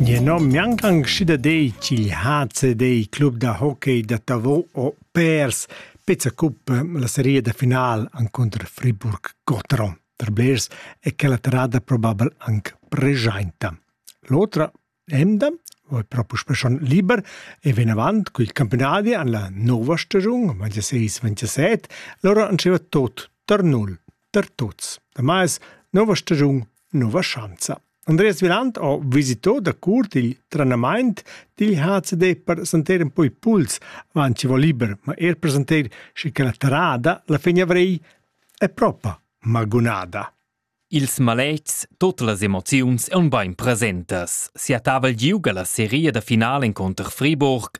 Jeu nom gnanc anc dei ch'igl HCD, club da hockey da Tavau o Pers, pezza cuppa la seria da final encunter Friburg-Gotteron per blers e che la terrada probabel anc pregiainta. L'otra emda va propo schon liber e ven avant cul campionadi an la nova stagiun 26-27, lora anceva tot tar null. per tuts. Damais, nova stagiun, nova schanza. Andreas Viland ha visitò da curt il trenamaint dil HCD per sentir un po i puls, avant ci va liber, ma er per sentir schi che la terrada la fin avrei è propa magunada. Ils maletgs, tote las emoziuns ein bein presentas. Sia tavel giuga la seria da finale inconter Friburg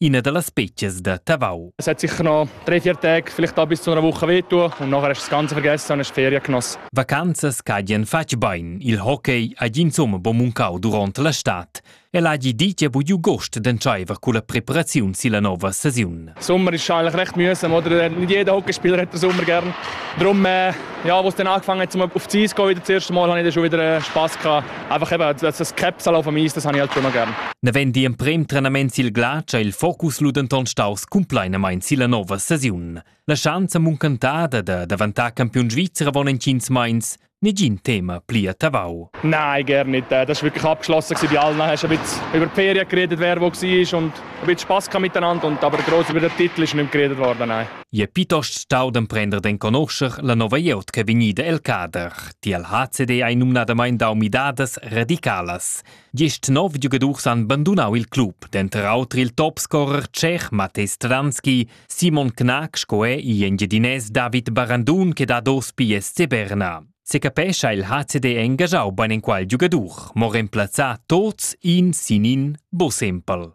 ina da las spezias da Tavau. Es hat sicher noch drei, vier Tage, vielleicht auch bis zu einer Woche wehtun und nachher hast du das Ganze vergessen und hast Ferien genossen. Vacanzas cadien fatg bain il hockey ha insomma bo muncau durant la stad. El ha gi dit bugiu gost d'entscheiver con la preparaziun silla nova saison. Sommer ist eigentlich recht mühsam, oder? Nicht jeder Hockeyspieler hat den Sommer gern. Darum, äh, ja, als es dann angefangen hat, auf die Eis zu gehen, wieder das erste Mal, habe ich dann schon wieder äh, Spass gehabt. einfach eben das Krebsal auf Amis, das habe ich halt schon mal gern. Navend emprem trenament sil glacia il focus lu denton staus cumplainamain silla nova saziun. La schanza muncantada da davantar campiun svizzer avon en tschins meins nigin Thema pli a Tavau. Nein, gar nicht. Das war wirklich abgeschlossen bei allen. Dann hast du ein bisschen über die Ferien geredet, wer wo war und ein bisschen Spass miteinander. Und, aber gross über den Titel ist nicht mehr geredet worden. Nein. Je piuttost stau d'emprender d'en conoscer la nova glieud che è vegnida el cader. Tiel HCD ei numnadamain dau midadas radicalas. Gist nov giugadurs han bandunau il club, denter auter il topscorer tschech Matej Stranski, Simon Knack sco è i engiadinès David Barandun che dat ospi SC Berna. Secapescha il HCD engajau beinenqual giugadur, mo remplazzà tots in sin in bus empel.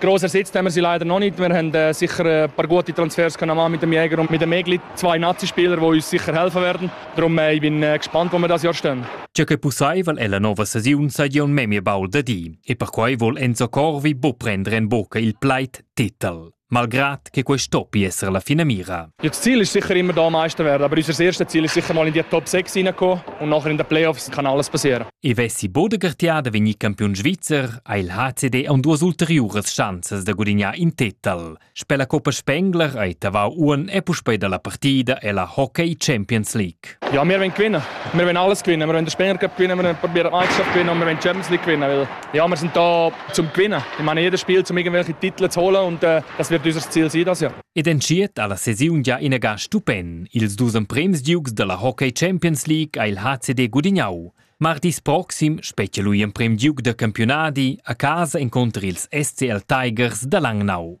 Gross ersetzt haben wir sie leider noch nicht. Wir haben äh, sicher äh, ein paar gute Transfers können machen mit dem Jäger und mit dem Egli. Zwei Nazi-Spieler, die uns sicher helfen werden. Darum äh, ich bin äh, gespannt, wo wir das Jahr stehen. Ciò che possai val ella nova stagiun sa Jon memia baulda di e perquai vuol Enzo Corvi bu prendere in bocca il pleit titel, malgrad che quest'o pi essere la fine mira. Das Ziel ist sicher immer da Meister werden, aber unser erstes Ziel ist sicher mal in die Top 6 hineinkommen und nachher in den Playoffs kann alles passieren. I vessi Bodegartiada vegnì campiun svizzer ha il HCD an duas ulteriuras schanzas da gudignar in titel. Sper la Coppa Spengler hai Tavau Uon e puspei dalla partida e la Hockey Champions League. Ja, wir wollen gewinnen. Wir wollen alles gewinnen. Wir wollen den Spengler Cup gewinnen, wir wollen probieren die Meisterschaft gewinnen und wir wollen die Champions League gewinnen, weil ja, wir sind da zum Gewinnen. Ich meine, jedes Spiel, um irgendwelche Titel zu holen und äh, das wird unser Ziel sein dieses Jahr. Ed entschiet ha la sesiun gia inagà stupent. Ils dus emprems giugs dalla Hockey Champions League ha il HCD gudignau. Martis proxim spetga lui emprem giug da campiunadi a casa encunter ils SCL Tigers da Langnau.